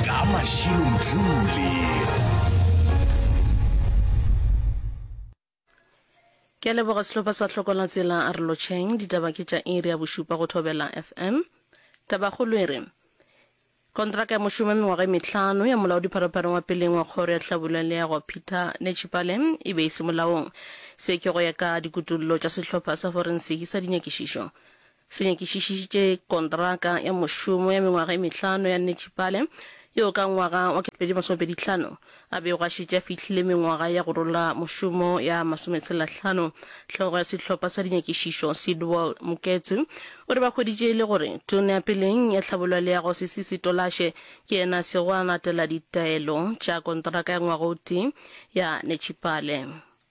ka mašilo jule ke a leboga sehlopha sa tlhokola tsela a re lotšheng ditaba ke tša iri ya bošupa go thobela fm tabakgolo e re kontraka ya mošomo ya mengwaga e metlhano ya molaodi pharophareng wa peleng wa kgoro ya tlhabula leago peter nechipale e be e se molaong se ke go ya ka dikutullo tša sehlopha sa forensiki sa dinyakišišo Se nyakišišitše kontraka ya mošomo ya mengwaga e mehlano ya Netšipale, yoo ka ngwaga wa 2025 a bego a šetše a fihlile mengwaga ya go rola mošomo ya masometshelahlano. Hlogo ya sehlopha sa dinyakišišo, Sidwell Muketsu, o re ba hweditše e le gore Tona ya Peleng ya Tlhabololego, Sisisi Tolashe, ke yena a sego a latela ditaelo tša kontraka ya ngwaga o tee ya Netšipale.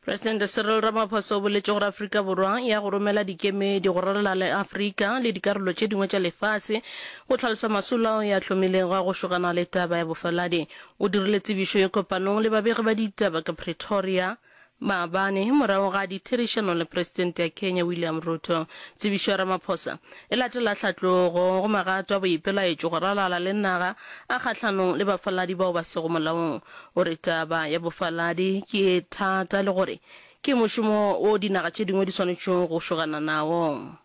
Presidente Cyril Ramaphosa o boletše gore Afrika Borwa e ya go romela dikemedi go ralala le Afrika le dikarolo tše dingwe tša lefase go tlhalosa masolo ao ya hlomilego a go šogana le taba ya bofaladi. O dirile tsebišo ye kopanong le babegi ba ditaba ka Pretoria. Maabane, morago ga ditherišano le Presidente ya Kenya William Ruto, tsebišo ya Ramaphosa e latela hlatlogo go magato a boipelaetšo go ralala le naga a kgahlanong le bafaladi bao ba sego molaong. O re taba ya bofaladi ke e thata le gore ke mošomo wo dinaga tše dingwe di swanetšego go šogana nawo.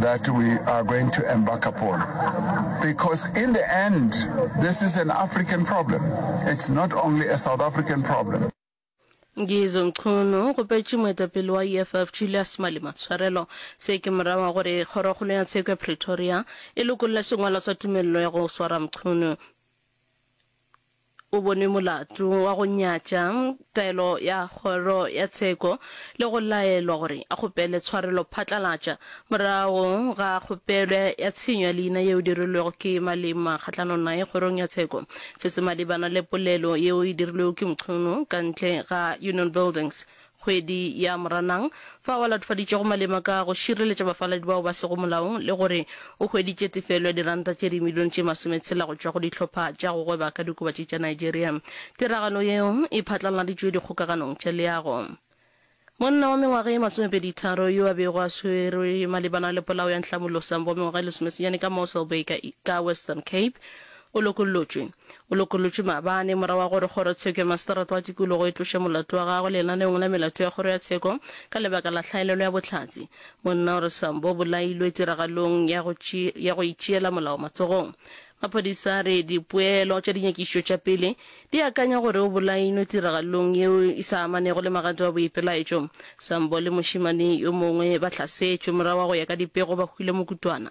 that we are going to embark upon. Because in the end, this is an African problem. It's not only a South African problem. Ngizo Mchunu o kgopetše moetapele wa EFF Julius Malema tshwarelo. Se ke morago wa gore kgorokgolo ya tsheko ya Pretoria e lokolle sengwalo sa tumelelo ya go swara Mchunu. o bonwe molato wa go nyatša taelo ya Kgoro ya Tsheko le go laelwa gore a kgopele tshwarelo phatlalatša morago ga kgopelo ya tshenyo ya leina yeo dirilwego ke Malema kgahlanong naye Kgorong ya Tsheko. Se se malebana le polelo yeo e dirilwego ke Mchunu ka ntle ga Union Buildings kgwedi ya Moranang, fao a latofaditšego malema ka go šireletša bafaladi bao ba sego molaong le gore o hweditše tefelo ya diranta tše dimilione tše masometshela go tšwa go dihlopha tša go gweba ka diokobatši tša Nigeria. Tiragalo yeo e phatlaladitšwe dikgokaganong tša leago. Monna wa mengwaga e masomepeditharo yo a bego a swerwe malebana le polao ya Nhlamulo Sambo wa mengwaga e lesomesenyane ka Mossel Bay ka Western Cape O lokollotšwe. O lokollotšwe maabane, morago ga gore Kgorotsheko ya Maseterata wa Tikologo e tloše molato wa gagwe lenaneong la melato ya Kgoro ya Tsheko ka lebaka la hlaelelo ya bohlatse. Monna o re Sambo o bolailwe tiragalong ya go, ya go itšeela molao matsogong. Maphodisa a re dipoelo tša dinyakišišo tša pele di akanya gore o bolailwe tiragalong yeo e sa amanego le magadi wa boipelaetšo. Sambo le mošemane yo mongwe ba hlasetšwe morago ga go ya ka dipego ba hwile mokutwana.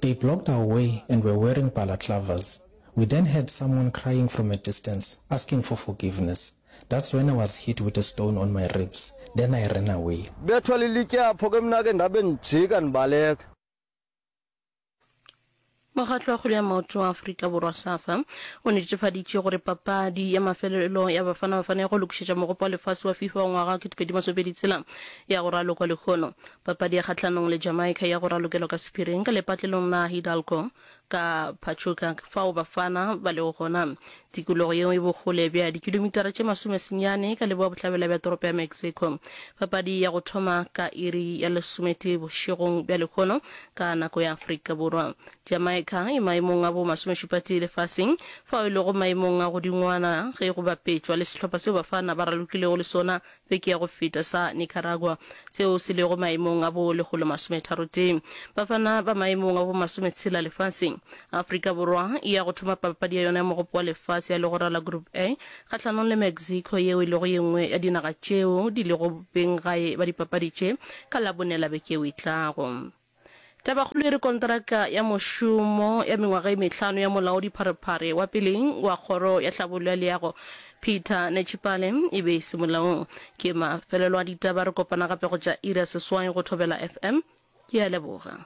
They blocked our way and were wearing balaclavas. We then heard someone crying from a distance asking for forgiveness. That's when I was hit with a stone on my ribs. Then I ran away. Bethwa lilitye apho ke mna ke ndabe ndijika ndibaleka. Mokgatlo wa Kgwele ya Maoto wa Afrika Borwa, Safa, o netefaditše gore papadi ya mafelelo ya Bafana Bafana ya go lokišetša Mogopo wa Lefase wa Fifa wa ngwaga wa 2026 ya go ralokwa lehono. Papadi ya kgahlanong le Jamaica ya go ralokelwa ka sephiring ka lepatlelong la Hidalgo ka Pachuca fao Bafana ba lego gona. Tikologo yeo e bokgole bja dikilomitara tše masome senyane ka leboa-bohlabela bja toropo ya Mexico. Papadi ya go thoma ka iri ya lesometee bošegong bja lehono ka nako ya Afrika Borwa. Jamaica e maemong a bo masomešupatee lefaseng fao e lego maemong a godingwana ge go bapetšwa le sehlopha seo Bafana ba ralokilego le sona beke ya go feta sa Nicaragua, seo se lego maemong a bo lekgolo masometharotee. Bafana ba maemong a bo masometshela lefaseng. Afrika Borwa e ya go thoma papadi ya yona ya Mogopo wa Lefase ya legora la Group A kgahlanong le Mexico yeo e lego ye nngwe ya dinaga tšeo di lego beng gae ba dipapadi tše ka Labone la beke yeo e tlago. Tabakgolo e re konteraka ya mošomo ya mengwaga e mehlano ya molaodipharephare wa pele wa Kgoro ya Tlhabollo ya Leago, Peter Netshipale, e be e se molaong. Ke mafelelo a ditaba. Re kopana gape go tša iri ya seswai go Thobela FM. Ke a leboga.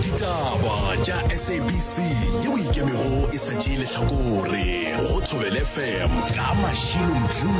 Ditaba tša SABC yeo e ikemego e sa tšee lehlakore go Thobela FM ka Mashilo Mjoo.